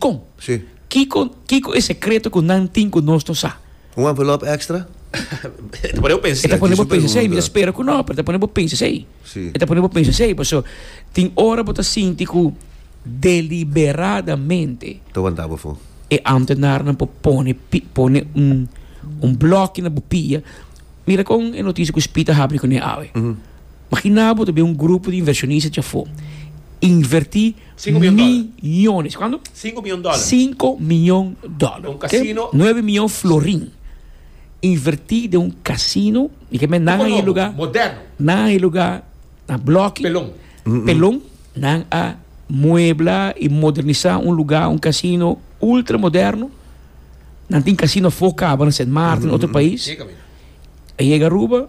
Con? Sí. Kico, kico e secreto cu nan tin cu nos no sa? Un envelop extra? E ta pone bo pensa. E ta pone bo pensa esey. Mi ta spera cu no, pero e ta pone bo pensa esey. Sí. E ta pone bo pensa esey. Paso, tin ora bo ta sinti cu deliberadamente. Ta wanta bo afo. E ambtenaarnan por pone, pi, pone un, un blokje na bo pia. Mira con e noticia cu SPI ta habri cune awe. Magina bo ta bin un grupo di inversionista djafo. Inverti. Sinku mion dòler. Miñones. Kuantu? Sinku mion dòler. Sinku mion dòler. Un kasino. Nuebe mion florin invertí den un kasino. Mi ke mén nan a e lugá. Nobo. Moderno. Nan a e lugá na blòki. Pelon. Pelon. Nan a muebla i modernisá un lugá, un kasino ultra moderno. Nan tin kasino afó kaba na Sint Maarten, otro pais. Ke kaminda. a yega Aruba,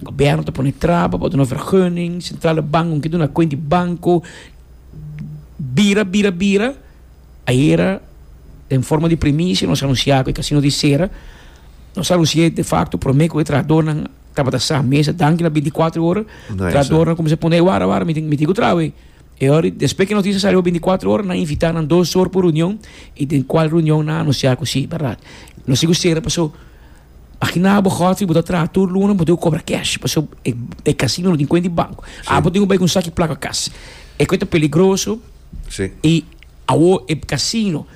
gobièrnu ta pone traba pa duna vergunning, sentrale bank un ke duna kuent di banko, bira, bira, bira, ayera den forma di primicia nos anunsiá ku e kasino ta sera, nos anunsi'é defakto promé ku e trahadornan tabata sa mesa danki na bintikuatro ora, trahadornan kuminsá pone, wara, wara, mi tin, mi tin ku traha wei, e ora, despues ku e notisia sali pa bintikuatro ora nan invitá nan dos or pa un reunion i den kual reunion nan anunsiá ku si, bèrdat, nos tin ku sera, pasó. Imagina bo God si bo ta traha tur luna bo tin ku kobra cash pasobra e casino no tin kuenta di banco. Sí. Abo tin ku bai ku un saki plaka kas. E kue ta peligroso Sí. i awo e casino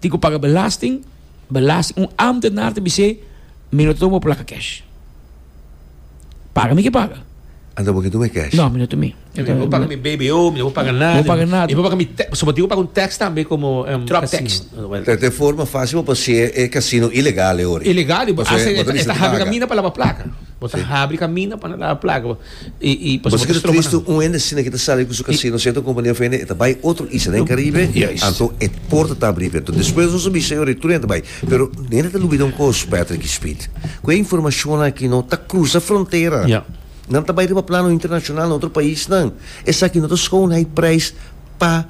tin ku paga belasting, belasting un amtenar ta bis'é mi no ta tuma bo plaka cash. Paga mi ke paga. Anta bo ke tuma e cash? No, mi no tuma. Oke, mi no paga mi BBO, mi no paga nada. No paga nada. Mi paga mi tax, so mi tin paga un tax tambe komo um drop tax. Ta ta forma fácil pa pasé e casino ilegal e ori. Ilegal, bo ta habi caminda pa laba placa. Bo ta habi caminda pa laba placa. I i pasobra. Bo ta estroba nan. Bo ta un hende sina ki ta sali ku su casino sierto compania of hende e ta bai otro isla den Caribe anto e porta ta abri pero despues nos a bisa e ori tur hende ta bai. Pero hende ta lubida un cos Patrick y Speed, ku e informacion aki no ta crusa frontera. Nan ta bai riba plano internashonal na otro paisnan. Esaki no ta skou un high prijs pa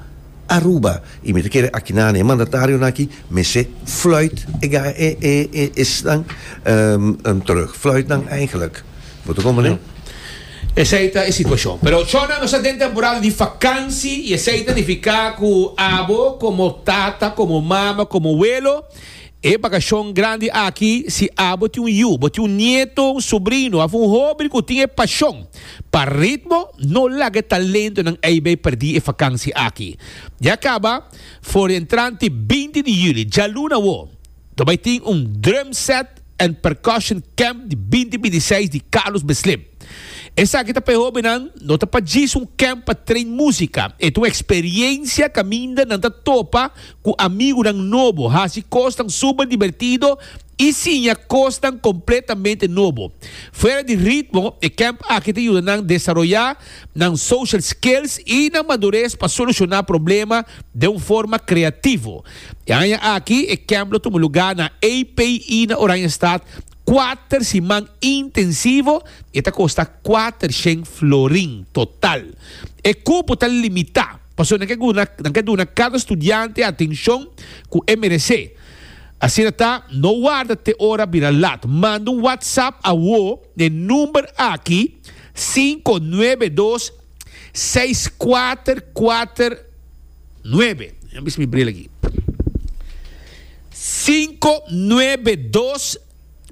Aruba. I mi ta kere akinan e mandatarionan aki mester fluit e esnan terug. Fluit nan eigenlik. Bo ta kon mane? Esei ta e situashon. Pero ochornan nos ta den temporada di fakansi i esei ta nifiká ku abo komo tata, komo mama, komo welo, E bakashon grandi aki, si a bo tin un yu, bo tin un nieto, un subrino of un hober ku tin e pashon pa ritmo, no laga e talentonan ei bai perdí e fakansi aki. Ya kaba, for di entranti binti di juli, djalun awo, nos bai tin un Drum Set and Percussion Camp di binti binti seis di Carlos Beslim. Esaki ta pa e hobennan, no ta pa djis un camp pa train músika, e ta un eksperiensia kaminda nan ta topa Ku amigunan nobo, hasi kosnan super dibertido i siña kosnan kompletamente nobo. Fuera di ritmo, e kemp aki ta yuda nan desaroyá nan social skills i nan madures pa solushoná problema den un forma kreativo. E aña aki, e kemp lo tuma lugá na API na Oranjestad, kuater siman intensivo i e ta kosta kuater shen florin total. E kupo ta limitá. Pasobra nan ke guna, nan ke duna kada studiante atenshon ku e meresé. Asina ta, no warda te ora bira lat. Manda un WhatsApp awo n'e number aki, sinku nuebe dos, seis kuater kuater nuebe. Dja mi bisa mi bril aki. Sinku nuebe dos.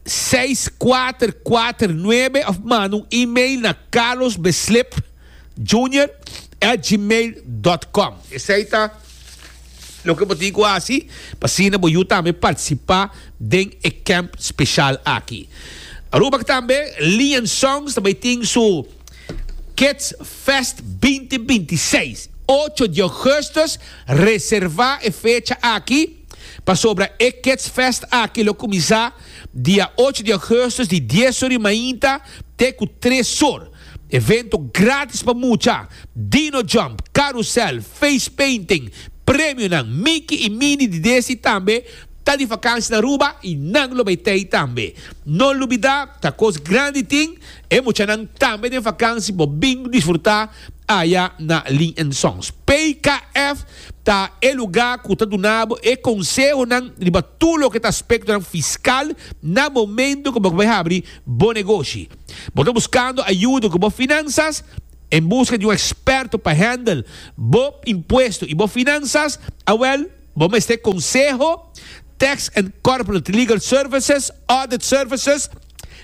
seis kuater kuater nuebe òf manda un email na Carlos Beslip Junior at gmail dòt kòm. Esei ta loke bo tin ku hasi pa asina bo yu tambe partisipá den e kèmp speshal aki. Aruba tambe Lion Songs ta bai tin su Kids Fest binti binti seis. Ocho di ògùstus, reservá e fecha aki. Pasobra e Kidsfest aki lo kuminsá dia ocho di Augustus di dies or di mainta te ku tres or. Evento grátis pa mucha, Dino Jump, Karusèl, Face Painting, premionan, Miki i Mini di desi tambe ta di vakansia na Aruba i nan lo bai t'ei tambe. No lubidá takos grandi tin, e muchanan tambe den vakansi por bin disfrutá aya na Lee and Sons. PKF. ta e lugá ku ta duna bo e konsehonan riba tur loke ta aspektonan fiskal na momentu ku bo bai habri bo negoshi. Bo ta buskando ayuda ku bo finansas? En buska di un eksperto pa hèndel bo impuesto i bo finansas? Awèl, bo mester konseho Tax and Corporate Legal Services, Audit Services,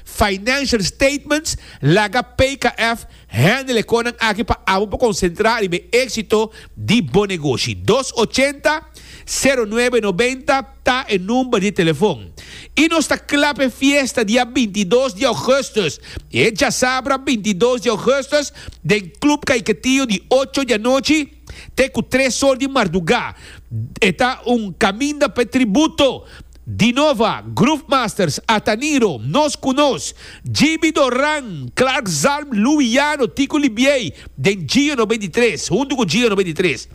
Financial Statements, Laga PKF hende lekonan aki pa abo pa konsentrá riba e éksito di bo negoshi. Dos ochenta, sero nuebe nobenta ta e number di telefon. I nos ta kla pa e fiesta dia binti dos di ougùstùs, e djasabra binti dos di ougùstùs, den Club Kaiketio di ocho di anochi, Te ku tres or di mardugá e ta un kaminda pa e tributo. Dinova, Groove Masters, Ataniro, Nos Ku Nos, Jibi Doran, Clark Zalm, Louie Jano, Tico Libiey, den Gio Nobenta i Tres, huntu ku Gio Nobenta i Tres.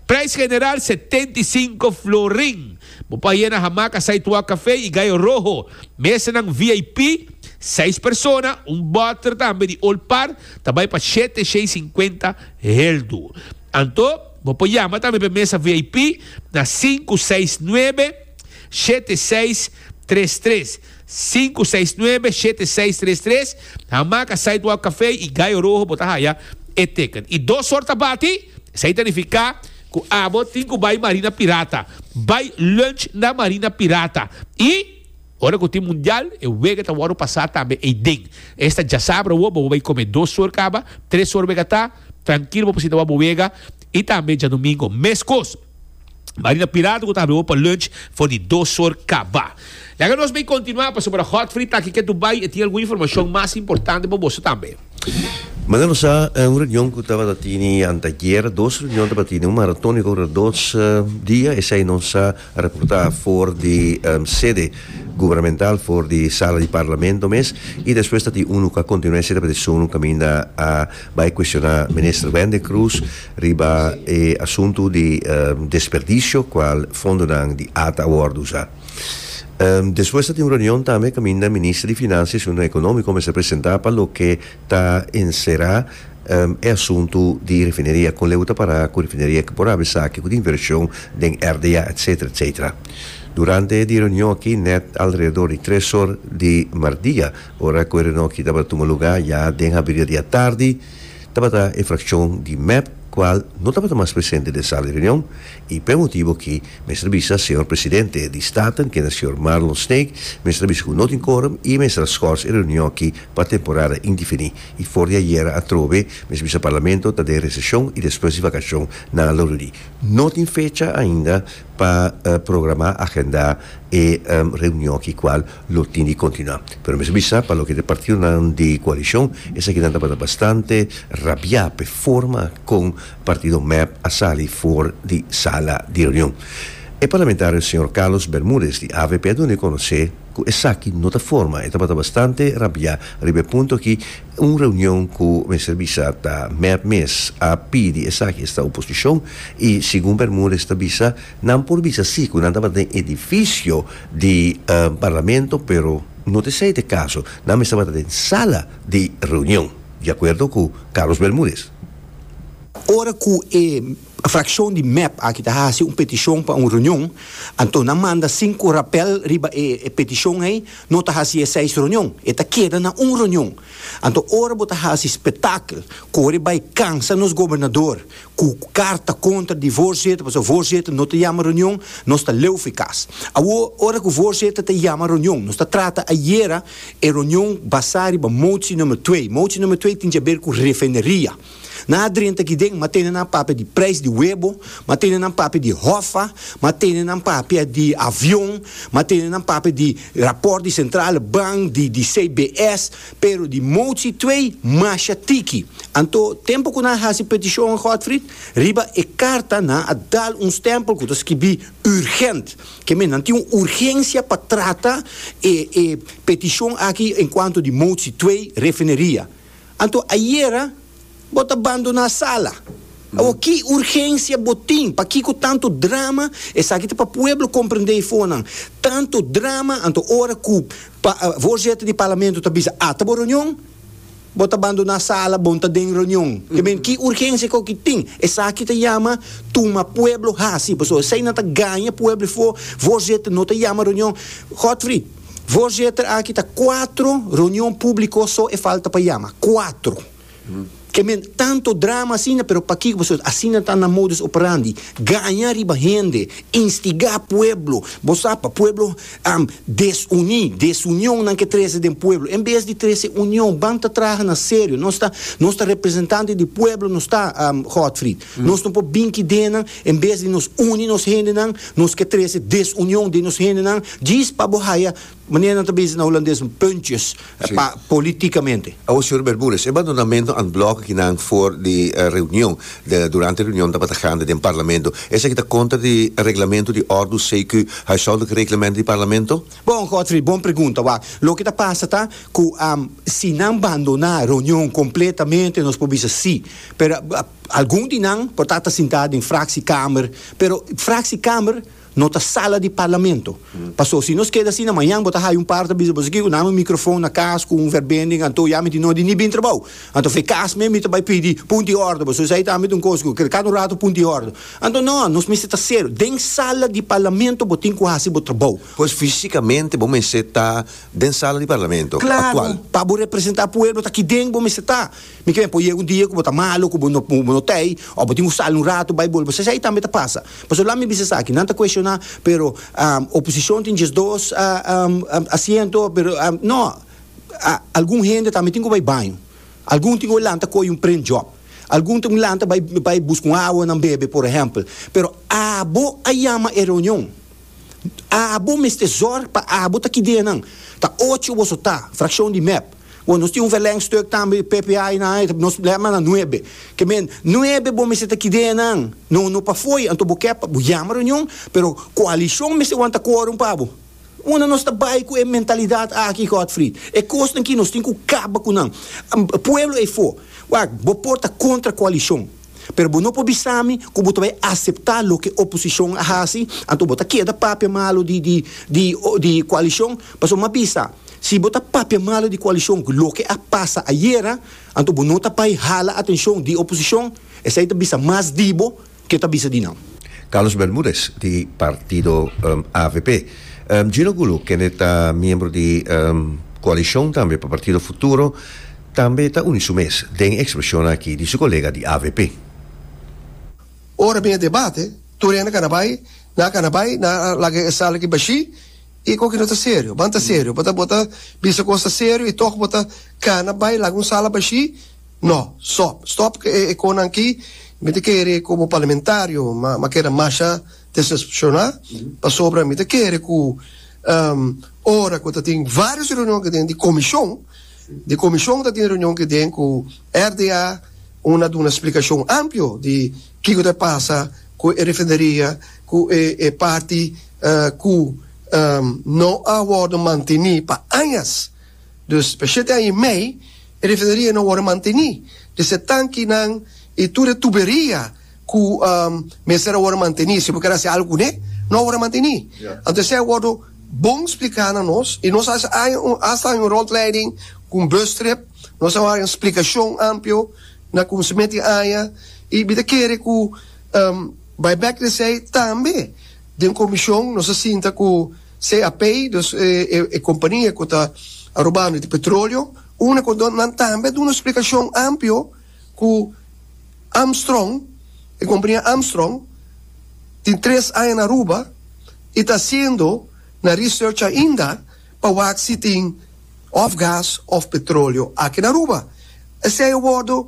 Prijs general setenta i sinku florin. Bo por haya na Hamaca Sidewalk Café i Gallo Rojo. Mesanan VIP, seis persona, un bòter tambe di Old Par ta bai pa shete shei sinkuenta Heel duur. Anto, bo por yama tambe pa e mesa VIP na sinku seis nuebe, shete seis, tres tres, sinku seis nuebe, shete seis, tres tres, Hamaca Sidewalk Café i Gallo Rojo bo ta haya e teken. I dos or tabati, esei ta nifiká ku abo tin ku bai Marina Pirata. Bai lunch na Marina Pirata i. Ora ku tin mundial e wega ta wòrdu pasá tambe ei den. Esta djasabra bo bo bai kome dos sor kaba, tres sor wega ta, trankil bo por sinta wak bo wega i tambe djadumingo meskos. Marina Pirato ku ta habia bo pa lunch for di dos sor kaba. Laga nos bai kontinuá pasobra ora Godfrey ta aki ke tu bai e tin algun informashon mas importante pa boso tambe. Manga nos a un reunion ku tabata tini anteayera, dos reunion tabata tini un maratóniko ora dos dia esei nos a. a reportá for di sede gubernamental, for di sala di parlamento mes, i despues ta tin unu ku a kontinuá e sede pa desishon unu kaminda a bai kuestioná Minister Wende Croes riba e asuntu di desperdisio kual fondonan di ata a wòrdu usá. Despues ta tin un reunion tambe kaminda Minister di Finansia i Asuntu Ekonómiko mester presentá pa loke ta enserá. E asuntu di refineria, con leu ta para cu refineria ke por habi saki cu tin inversion den RDA etc. Etc. Durante di reunion aki net alrededor di tres or di mardia, ora cu e reunion aki tabata tuma luga ya den haberia di atardi, tabata e fraccion di mep cual no tabata mas presente den sala di reunion y p'e motibo aki mester bisa Señor Presidente di Staten kende Señor Marlon Snake mester a bisa cu no tin quorum y mester a schors e reunion aki pa temporada indefini. y for di ayera atrobe mes bisa Parlamento ta den recesión y despues di vacacion nan a loruri. No tin fecha ainda pa programa, agenda, e reunion aki cual lo tin di continua. Pero mester bisa pa loke ta e partidonan di coalicion esaki nan tabata bastante rabia p'e forma con partido mep a sali for di sala di reunion. E parlamentario señor Carlos Bermudez di avp a dun'e conoce. Ku esaki no ta forma e tabata bastante rabiá riba e punto aki, un reunion ku mester bisa ta mèp mes a pidi esaki esta oposishon i segun Bermudez ta bisa nan por bisa si ku nan tabata den edifisio di parlamento pero no ta esei ta e kaso, nan mes tabata den sala di reunion, di akuerdo ku Carlos Bermudez. Ora ku e Frakshon di mep aki ta hasi un petishon pa un reunion, anto nan manda sinku rapèl riba e petishon ei, no ta hasi e seis reunion, e ta keda na un reunion. Anto ora bo ta hasi spetakl, kore bai kansa nos gobernador ku karta kontra di voorzitter, pasobra voorzitter no ta yama reunion, nos ta leu fi kas. Awor, ora ku voorzitter ta yama reunion, nos ta trata ayera e reunion basá riba motsi número twee. Motsi número twee tin djaber ku refineria. Nan a drenta aki'den, m'a tende nan papia di prijs di webo, m'a tende nan papia di hofa, m'a tende nan papia di avion, m'a tende nan papia di raport di Centrale Bank, di di CBS, pero di motie twee masha tiki. Anto, tempo ku nan a hasi petishon, Godfried, riba e karta nan a dal un stempel ku ta skibi urgent. Ke men, nan tin un urgensia pa trata e e petishon aki en kuanto di motie twee refineria. Anto ayera bo ta bandoná sala. Awor ki urgensia bo tin? Pakiko tanto drama? Esaki ta pa pueblo comprendé e fonan. Tanto drama anto ora cu voorzitter di parlamento ta bisa ata bo reunion bo ta bandoná sala bon ta den reunion. Eben ki urgensia cu aki tin? Esaki ta yama tuma pueblo haci. Pasobra esai nan ta gaña pueblo e fo voorzitter no ta yama reunion. Godfrey. Voorzitter, aki ta cuatro reunion publico so e falta pa yama. Cuatro. Ke men, tanto drama asina, pero pakiko boso asina ta nan modus operandi? Gaña riba hende, instigá pueblo. Bo sa pa pueblo desuní, desunionnan ke trese den pueblo. En bes di trese union, ban ta traha na serio. Nos ta, nos ta representante di pueblo nos ta, Godfried. Nos no por bin kidenan, en bes di nos uni nos hendenan, nos ke trese desunion den nos hendenan, djis pa bo haya, manera nan ta bese na Hulandes, puntjes, pa politikamente. Awo, señor Bermudez, e bandonamento an blok aki nan for di reunion, durante reunion tabata gande den Parlamento, esaki ta kontra di reglamento di Ordus CQ, Huishoudelijk Reglement di Parlamento? Bon, Godfrey, bon pregunta. Wak, loke ta pasa ta ku si nan bandona reunion kompletamente nos por bisa si, pero Algun di nan por ta ta sintá den fraksiekamer, pero fraksiekamer no ta sala di parlamento. Paso si nos keda asina, mañan bo ta haya un par ta bisa boso, Kiko, nami un mikrofon na kas ku un verbending, anto ya mi tin nodi ni bin trabou. Anto fe kas mi, mi ta bai pidi punto i orde boso. Esei ta ambit un kos ku kada un ratu punto i orde. Anto no, nos mester ta serio. Den sala di parlamento bo tin ku hasi bo trabou. Pues físikamente bo mester ta den sala di parlamento aktual? Klaro, pa bo representá pueblo ta aki den bo mester ta. Mi ke pon yega un dia ku bo ta malu, ku bo no bo no ta ei, òf bo tin ku sali un ratu bai bolbe. Sesei tambe ta pasa. Pasobra laat mi bisa esaki, nan ta kueshoná, pero oposishon tin diesdos asiento, pero nò, algun hende tambe tin ku bai baño, algun tin ku bai lanta koyo un prendjòp, algun tin ku lanta bai bai buska un awa nan bebe, por ehèmpel. Pero abo a yama e reunion. Abo mester zorg pa abo ta ki dje nan. Ta ocho boso ta, frakshon di mep. Bo, nos tin un verlengstuk tambe, PPA na ai, nos lèt manda nuebe. Ke men, nuebe bo mester ta ki dje nan. No, no pa fo'i. Anto bo ke, bo yama reunion, pero koalishon mester wanta kworum pa bo. Unda nos ta bai ku e mentalidat aki, Godfried? E kosnan ki nos tin ku kaba ku nan. Pueblo ei for. Wak, bo por ta kontra koalishon. pero bo no por bisa mi ku bo ta bai aseptá loke oposishon a hasi, anto bo ta keda papia malu di di di di koalishon, pasobra mi a bisa si bo ta papia malu di koalishon ku loke a pasa ayera, anto bo no ta bai hala atenshon di oposishon, esei ta bisa mas di bo ke ta bisa di nan. Carlos Bermudez, di partido avp. Gino Gulu, kende ta miembro di koalishon tambe pa partido Futuro, Tambe ta uni su mes den e ekspresionnan aki di su kolega di avp. Ora bin e debate, tur hende kana bai, nan kana bai, nan a laga e sala aki bashí, i koki no ta serio? Ban ta serio? Bo ta bo ta bisa kos ta serio i tòg bo ta kana bai laga un sala bashí? Nò, stòp, stòp ku e konan aki, mi ta kere komo parlamentario ma ma keda masha desespreshoná, pasobra mi ta kere ku ora ku ta tin vários reunion den di komishon, Di Comishon ta tin reunion kiden cu RDA un a duna splicacion amplio di kico ta pasa cu e refineria cu e parti cu no a wordo manteni pa añas. Dus pa e shete aña y mei e refineria no a wordo manteni. Di se tankinan y tur e tuberia. ku mester a wòrdu mantení, si bo kier hasi algu kuné, no a wòrdu mantení. Anto esei a wòrdu bon spliká na nos, i nos a haña un, hasta haña un rondleiding ku un bustrip, nos a haña un splikashon amplio na ku se mester haña, i mi ta kere ku bai bèk di esei tambe den komishon nos a sinta ku CAP, dus e kompania ku ta a robando e petroleo, unda ku nan tambe a duna splikashon amplio. Ku Armstrong, e kompania Armstrong tin tres aña na Aruba i ta hasiendo nan research ainda pa wak si tin òf gas òf petroleo aki na Aruba. Esei a wordu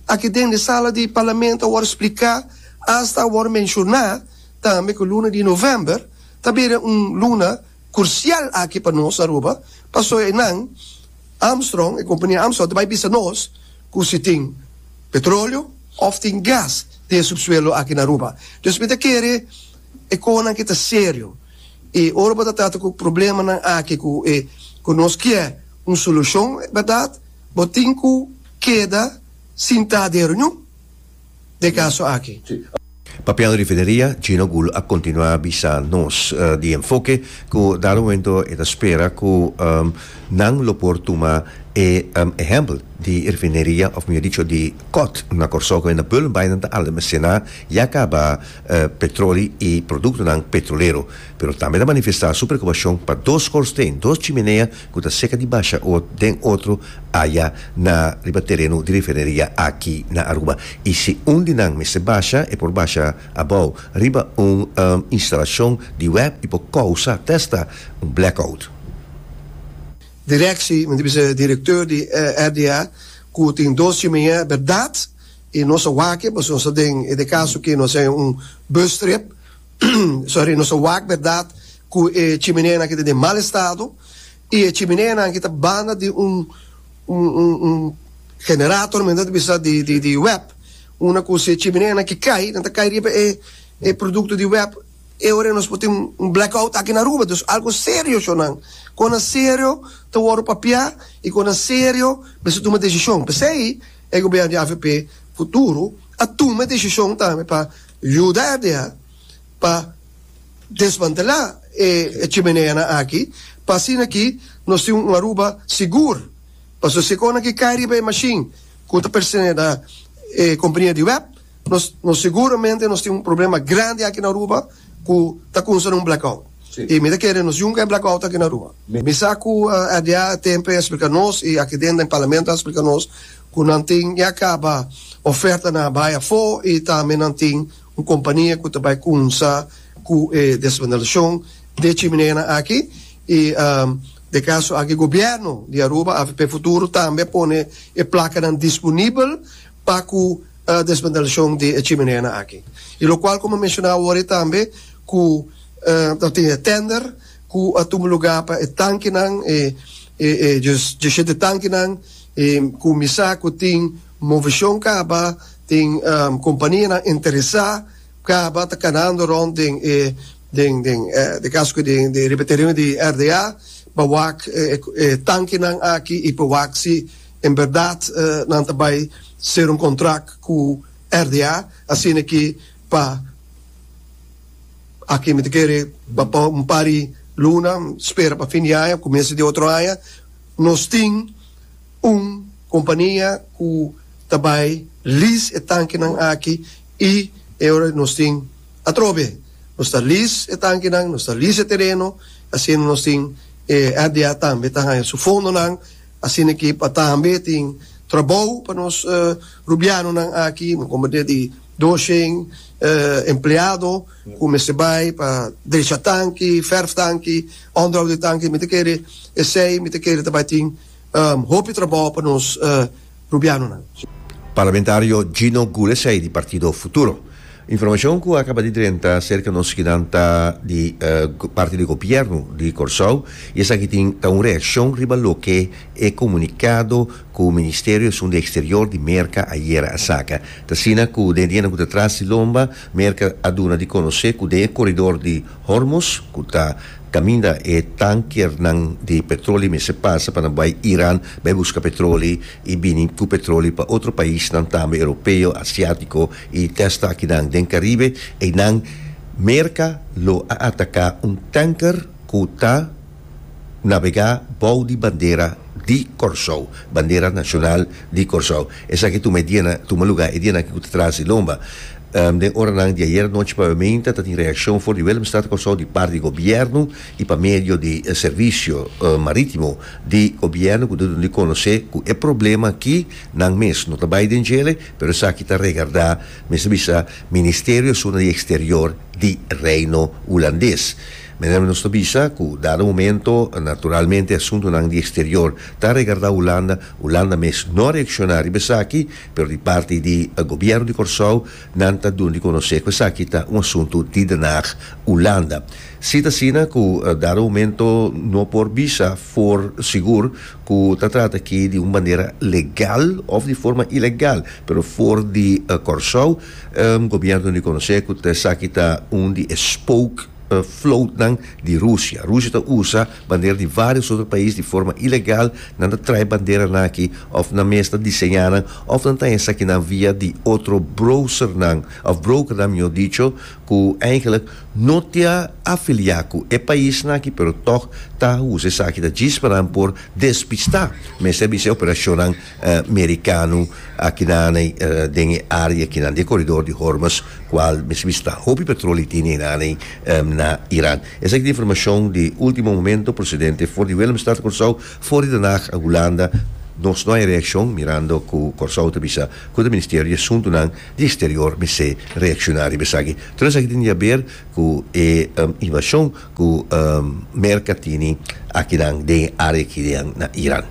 aki den e sala di Parlamento a wòrdu spliká, asta a wòrdu menshoná tambe ku luna di novèmber ta bira un luna kursial aki pa nos na Aruba pasobra e nan, Armstrong, e kompania Armstrong ta bai bisa nos ku si tin petroleo òf tin gas den e supsuelo aki na Aruba. Entonces mi ta kere e kohonan ke ta serio i ora bo ta trata ku problemanan aki ku e ku nos ke un solushon, bèrdat, bo tin ku keda sintá den e reunion. den kaso aki. Papel di Fideria, Gino Gul a kontinuá bisa nos di enfoke ku dado momento e ta spera ku nan lo por tuma e ehèmpel di refineria òf mihó dicho di kòt na Kòrsou ku enda Bullenbaaien ta almesená ya kaba petroli i produktonan petrolero pero tambe ta manifestá su preokupashon pa dos skòrsteen, dos chimenea ku ta seka di basha ot den otro aya na riba tereno di refineria aki na Aruba. I si un di nan mester basha, e por basha abou riba un instalashon di web i por kousa testa un blackout. Direkshi, mi ta bisa e direktor di RDA ku tin dos chimenea, e bèrdat i nos a wak e paso nos ta den e de kaso ke nos a haña un bustrip. Sorry, nos a wak berdad cu e chimineanan aki ta den mal estado y e chimineanan aki ta banda di un un generator men nan ta bisa di di di web unda cu si e chimineanan aki cay nan ta cay riba e e producto di web e ora nos por tin un black out aki na Aruba dus algo serio sho nan con nan serio ta wordo papia y con nan serio bisa tuma decision p'esey e gobierno di avp futuro a tuma e decision tambe pa Yuda e deha pa desmantelá e chimeneanan aki pa asina ki nos tin un Aruba sigur. Pasobra si e konan ki kai riba e mashin ku ta pertense na e kompania di web, nos nos seguramente nos tin un problema grandi aki na Aruba ku ta kunsa na un blackout. I mi ta kere nos yunka e blackout aki na Aruba. Mi sa ku e deha a tempo e eksplika nos i aki den den Parlamento a eksplika nos Cu nan tin ya caba ofertanan a bay afo y tambe nan tin un compania cu ta bay cumsa cu e desmantelacion di e chimineanan aki y den caso aki Gobierno di Aruba, AVP Futuro, tambe a pone e placanan disponibel pa cu desmantelacion di e chimineanan aki. Y locual como a menciona awor tambe cu ta tin e tender cu a tuma lugar pa e tankinan, e diecisiete tankinan, E kuminsá ku tin moveshon kaba, tin kompanianan interesá, kaba ta kanando rònt den e den den e kaso ke den den riba tereno di RDA pa wak e tankenan aki i pa wak si en bèrdat nan ta bai ser un kontrak ku RDA asina ke pa aki mi ta kere pa un par di luna spera pa fin di aña o kuminsho di otro aña. Nos tin un kompania ku ta bai lease e tankinan aki i e ora nos tin atrobe. Nos ta lease e tankinan, nos ta lease e tereno, asina nos tin e RDA tambe ta haña su fondonan, asina ke pa tambe tin trabou pa nos Rubianonan aki, un kompania di dos shen empleado. Cu mester bay pa drecha tanki, verf tanki, onderhoud di tanki, mi ta kere esey mi ta kere ta bay tin hopi trabao pa nos Rubianonan. Parlamentario Gino Gulesey di partido Futuro. Informacion cu a caba di drenta acerca nos schinan ta di parti di Gobierno di Corsou y esaki tin ta un reaccion riba loke e comunicado cu Ministerio Asunto Exterior di Merca ayera a saca. Ta asina cu den di hende cu ta tras di lomba Merka a duna di konosé ku den e koridor di Hormuz, ku ta kaminda e tankernan di petroli mester pasa pa nan bai Iran bai buska petroli i bini ku petroli pa otro paisnan tambe Europeo, Asiátiko i desta akinan den Karibe, einan Merka lo a ataká un tanker ku ta. nabegá bou di bandera di Kòrsou, bandera nashonal di Kòrsou. Esaki tuma e dianan, tuma lugá e dianan ku ta tras di lomba. Den oranan di ayera nochi pabiamenta ta tin reakshon for di Willemstad Kòrsou di parti di gobièrnu i pa medio di servisio marítimo di gobièrnu ku ta duna di konosé ku e problema aki nan mes no ta bai den djele pero esaki ta regardá mester bisa Ministerio Asuna di Eksterior di Reino Hulandes. Meneer, nos ta bisa cu dado momento, naturalmente asuntonan di exterior ta regardá Hulanda, Hulanda mes no a reacciona riba esaki, pero di parti di Gobierno di Corsou nan ta duna di conoce cu esaki ta un asunto di Den Haag, Hulanda. Si ta asina cu dado momento no por bisa for sigur cu ta trata aki di un bandera legal of di forma ilegal, pero for di Corsou, Gobierno no di conoce cu esaki ta un di e spook, floatnan di Rusia. Rusia ta usa bandera di vários otro pais di forma ilegal, nan ta trae banderanan aki of nan mes ta diseñá nan of nan ta haña esakinan via di otro browsernan of brokernan mihor dicho ku eigenlijk no ta afiliá ku e paisnan aki pero tòg ta usa esaki ta djis pa nan por despistá mester a bisa e operashonnan Merikano akinan den e área kinan di e koridor di Hormuz kual mi sibi sta hopi petroli tin einan na Iran. Esaki ta informashon di último momento presidente for di Willemstad Kòrsou for di Den Haag Hulanda Nos no hay reaccion mirando ku Kòrsou ta bisa ku ta Ministerio di Asuntunan di Eksterior mester reakshoná riba esaki. Tur esaki tin di haber ku e invashon. Ku Merka tini akinan den área aki rian na Iran.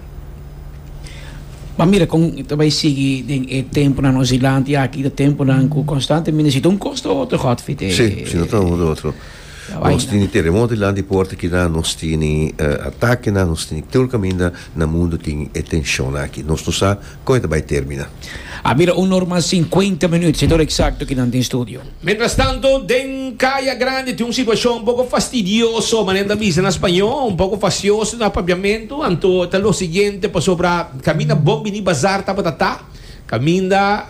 M'a mira kon ta bai sigui den e tempunan nos dilanti aki. Ta tempunan ku konstantemente si ta un kos ta otro hot fit e. Sí, si no ta un kos ta otro. Nos tini teremoto dilanti puerta akinan, nos tini atakenan, nos tini tur kaminda na mundu tin e tenshonnan aki. Nos no sa kon e ta bai termina. A mira un normal sinkuenta minüt, si tur eksakto ki nan tin studio. Mientrastanto, den Kaya Grandi tin un situashon un poko fastidioso, manera ta bisa na spañó, un poko fasioso na papiamentu, anto ta lo siguiente, pasobra kaminda bon biní bazar tabata ta kaminda.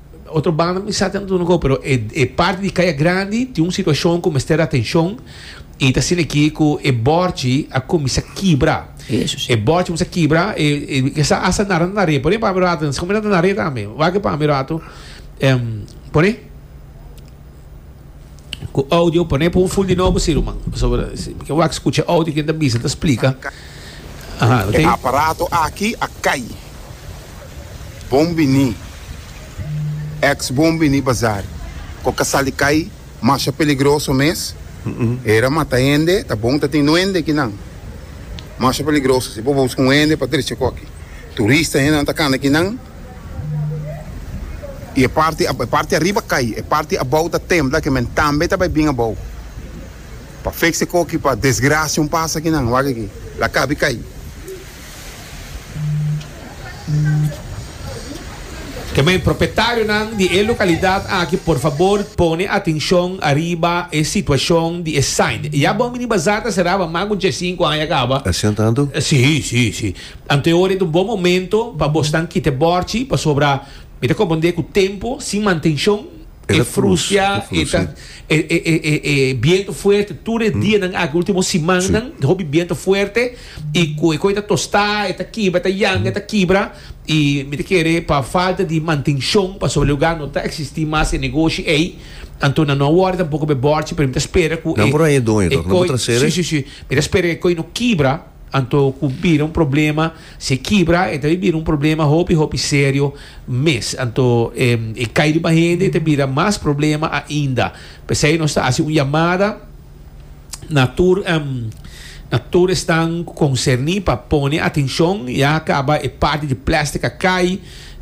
Otro banda mi sa ta duna go, pero e parti di Kaya Grandi tin un situashon ku mester atenshon i ta sin aki ku e bòrchi a kuminsá kibra. E bòrchi a kuminsá kibra, e sa asta nará ta na re. Pone pami un ratu, ta kuminsá ta na re tambe. Wak pami un ratu, pone. ku audio pone pa un full di nobo si ruman pasobra si mi ke wak skucha audio ken ta bisa ta splika aha lo E tin aparato aki a kai. Bon bini ex bon bini bazar ko ka sali kai masha peligroso mes era mata hende ta bon ta tin nuende kinan masha peligroso si bo busca un hende pa dirishi koki turista hendenan ta kana kinan. I e parti e parti ariba kai, e parti abou ta tembla, ke men tambe ta bai bin abou. Pa fekse ko aki pa desgrasia un pasa aki nan, wak aki, la kabi kai. Kemei, propetarionan di e lokalidat aki por fabor pone atenshon ariba e situashon di e sain. Ya bon mini bazar ta seraba mas ku djes sinku aña kaba. Asina tantu? Sí, sí, sí. Anto ora e ta un bon momento pa bo snan kita e bòrchi, pasobra mi ta komprendé ku tempu sin mantenshon e frustia, e ta e e e e e bientu fuerte tur e dianan aki último simannan ta hopi bientu fuerte i ku e koi ta tostá e ta kibra e ta yanga e ta kibra i mi ta kere pa falta di mantenshon pasobra lugá no ta eksistí mas e negoshi ei anto nan no a wòrdu tampoko bo e bòrchi pero mi ta spera ku e e koi si si si mi ta spera ku e koi no kibra. Anto ku bira un problema, si e kibra e ta bin bira un problema hopi hopi serio mes. Anto e e kai riba hende e ta bira mas problema ainda. P'esei nos ta hasi un yamada na tur na tur esnan ku konserni pa pone atenshon ya kaba e parti di plèstik a kai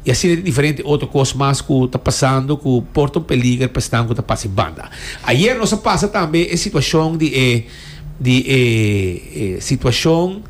i asina di diferente otro kos mas ku ta pasando ku porta un peliger pa esnan ku ta pasa banda. Ayer nos a pasa tambe e situashon di e. di e situacion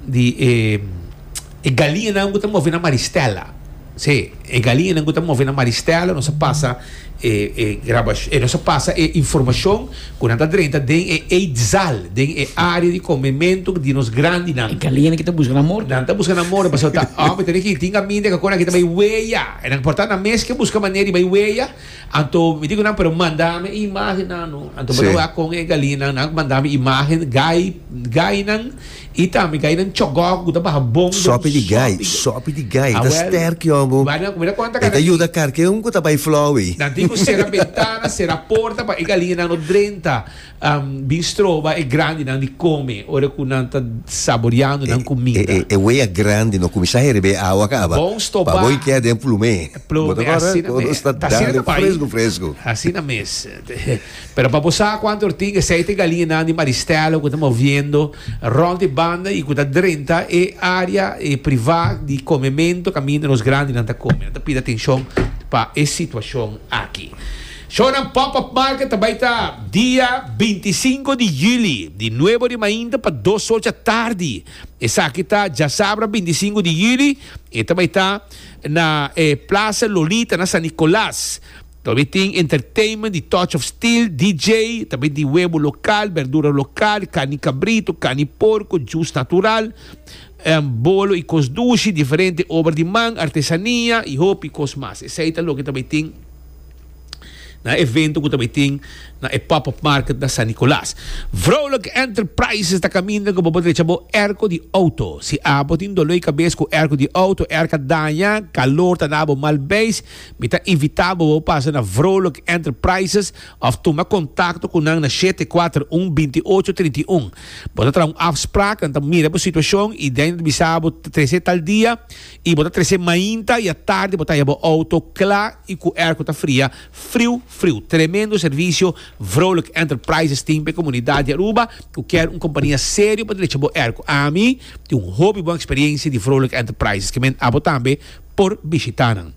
di e galiñanan cu ta move na Maristella. Sí, e galiñanan cu ta move na Maristella, nos a pasa e grabacion, nos a pasa e informacion cu nan ta drenta den e eetzaal, den e area di comemento di nos grandinan. E galiñanan ki ta busca nan morto. Nan ta busca nan morto, pasobra ta homber, tin aki, tin caminda, e cacora aki ta bay weya. E nan por ta nan mes ke busca manera di bay weya. Anto mi di ku nan, Pero mandami e imágennan, no? Anto bo ta wak kon e galinan. Nan a manda mi imágen gai, gainan i tambe gainan chogòk ku ta baha bon den sopi. Sopi di gai, sopi di gai. E ta stèrk, yògo. Bai nan kumida konta kanan. E ta yuda karke un ku ta bai flou ei. Nan tin ku sera bentana, sera porta pa e galinan no drenta. Bin stroba e grandinan di come ora cu nan ta saboreando nan cuminda. E wea grandi no cuminsa heri bay awa caba. Bon stoba. Pa bo y keda den plume. Plume, asina mes. Nos ta dale fresco fresco. Asina mes. Pero pa bo sa cuanto e tin e seite galiñanan di Maristella cu ta moviendo rond e banda y cu ta drenta e area priva di comemento caminda nos grandinan ta come. Nan ta pidi atencion pa e situacion aki. Shownan Pop Up Market ta bai ta dia binti sinku di yüli, di nuebu di mainta pa dos ocha tardi. Esaki ta djasabra binti sinku di yüli i ta bai ta na e Plaza Lolita na San Nicolas. Ta bai tin entertainment di Touch of Steel, DJ, ta bai di webo lokal, berdura lokal, karni kabritu, karni porku, jus natural, bolo i kos dushi, diferente obra di man, artesania i hopi kos mas. Esei ta loke ta bai tin. na evento cu ta bay tin na e Pop Up Market na San Nicolas. Vrolijke Enterprises ta caminda cu bo por drecha bo airco di auto. Si abo tin dolor di cabes cu airco di auto, airco a daña, calor ta na abo mal beis, mi ta invita bo bo pasa na Vrolijke Enterprises of tuma contacto cu nan na shete kuater un, binti ocho trinta i un. Bo ta traha un afspraak, nan ta mira bo situacion y den nan ta bisa bo trece tal dia. y bo ta trece mainta y atardi bo ta haya bo auto cla y cu air cu ta fria friu friu. Tremendo servicio Vrolijk Enterprises tin p'e comunidad di Aruba cu kier un compania serio pa drecha bo air cu. Ami tin un hopi bon experiencia di Vrolijk Enterprises que men abo tambe por bishita nan.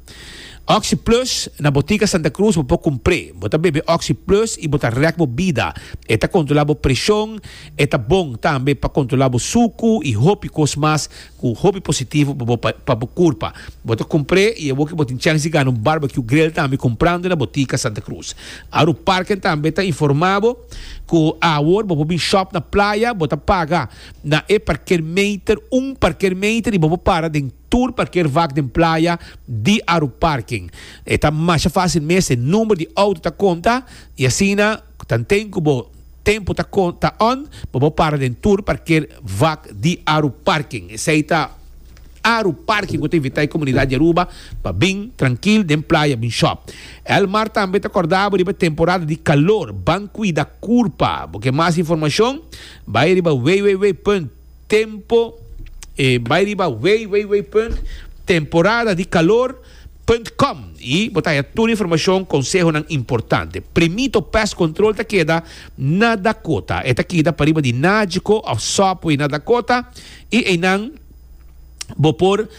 Oxy Plus, na Botica Santa Cruz bo por cumpre. Bo ta bebe Oxy Plus y bo ta rek bo bida. E ta controla bo presion, e ta bon tambe pa controla bo sucu y hopi cos mas Cu un hopi positivo pa bo pa bo curpa, bo ta compre y abo ki bo tin chans di gana un barbecue grill tambe comprando na botica Santa Cruz. Aru Parken tambe ta informa bo cu awor bo por bin shop na playa, bo ta paga na e parker meter, un parker meter, y bo por para den tur parker vak den playa di Aru Parken. E ta masha facil mes, e number di auto ta conta y asina. Cu ta nten cu bo tempo ta con ta on, pa bo para den tur parker vak di Aru Parking. Esey ta Aru Parking cu ta invita e comunidad di Aruba pa bin trankil den playa bin shop. Elmar tambe ta corda bo riba e temporada di calor. Ban cuida curpa. Bo ke mas informacion? Bay riba www. Tempo e bai riba wei wei wei punt Temporada di calor punt com y bo ta haya tur informacion consehonan importante. Primito pest control ta keda na Dakota. E ta kida pariba di Nagico of Subway na Dakota y eynan bo por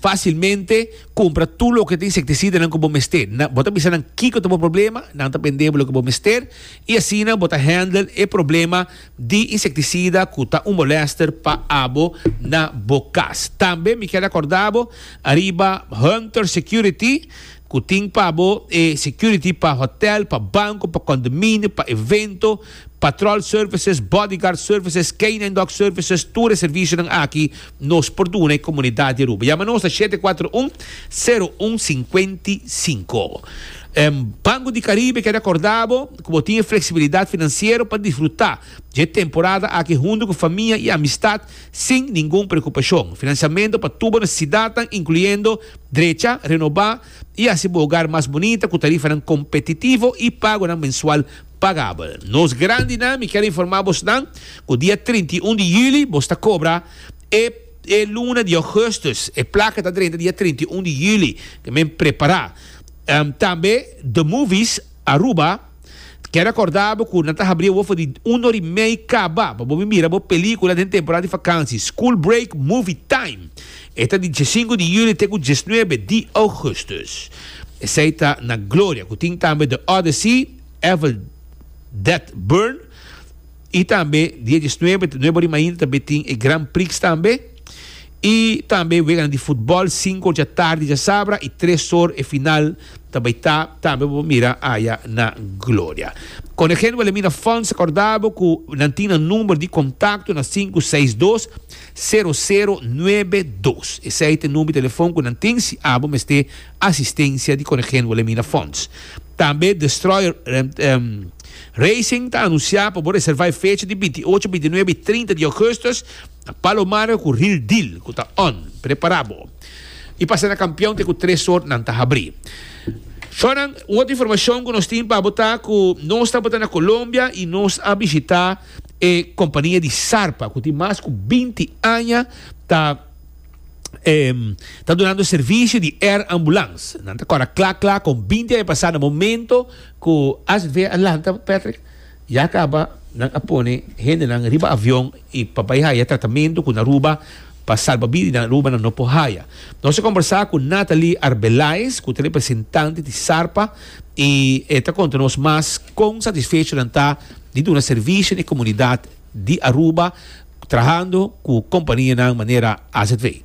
facilmente cumpra tur loke ta insecticidanan cu bo mester. Bo ta bisa nan kico ta bo problema, nan ta bende bo loke bo mester y asina bo ta handle e problema. di insektisida ku ta un molèster pa abo na bo kas. Tambe mi kier akordá bo ariba Hunter Security ku tin pa bo e security pa hotèl, pa banko, pa kondominio, pa evento, patròl services, bodyguard services, canine dog services, tur e servisionan aki. nos por duna e komunidat di Aruba. Yama nos na shete kuater un, sero un sinkuenti sinku. Banko di Karibe keda korda bo ku bo tin e fleksibilidat finansiero pa disfrutá dje temporada aki huntu ku famia i amistat sin ningun preokupashon. Finansiamentu pa tur bo nesesidatnan inkluyendo drecha, renobá i hasi bo ogar mas bunita ku tarifanan kompetitivo i pagonan mensual Pagabel. Nos grandinan, mi ker informá bosnan ku dia trinta i un di juli bos ta kobra e e luna di ougustus. E plaka ta drenta dia trinta i un di juli. Men prepará. Tambe The Movies Aruba ker rekordá bo ku nan ta habrí e wof di un or i mei kaba pa bo bin mira bo pelíkula den temporada di fakansi, School Break Movie Time. E ta di diesinku di juli te ku diesnuebe di ougustus. Esei ta na Gloria ku tin tambe The Odyssey. Evel Death Burn y tambe dia diesnuebe te nuebe rimainta tambe tin e Grand Prix tambe y tambe weganan di futbol sinku dja tardi dja sabra y tres or e final ta bay ta tambe bo por mira aya na Gloria. Con e Genwell Emina Funds recordabo cu nan tin nan number di contacto na sinku seis dos sero sero nuebe dos esey ta e number di telefon cu nan tin si abo mester asistencia di Conejen Wilhelmina Fonds. Tambe Destroyer Racing ta anuncia pa bo reserva e fecha di binti ocho, binti nuebe y trinta di agosto na Palomares cu Real Deal cu ta on. Prepara bo y pasa na Campeon te cu tres or nan ta habri. Shonan, un otro informacion cu nos tin pa bo ta cu nos tabata na Colombia y nos a bishita e compania di Sarpa cu tin mas cu binti aña ta. em, ta dunando servicio di air ambulance. Nan ta cora cla cla con 20 años pasar na momento cu AZV a lanta, Patrick, ya caba, nan a pone hende nan riba avion y pa bay haya tratamento cu na Aruba pa salba bida y na Aruba nan no por haya. Nos a conversa cu Nathalie Arbeláez, cu ta representante di Sarpa y e ta conta nos mas con satisfecho nan ta di duna servicio na e comunidad di Aruba, Trahando cu companianan manera azv.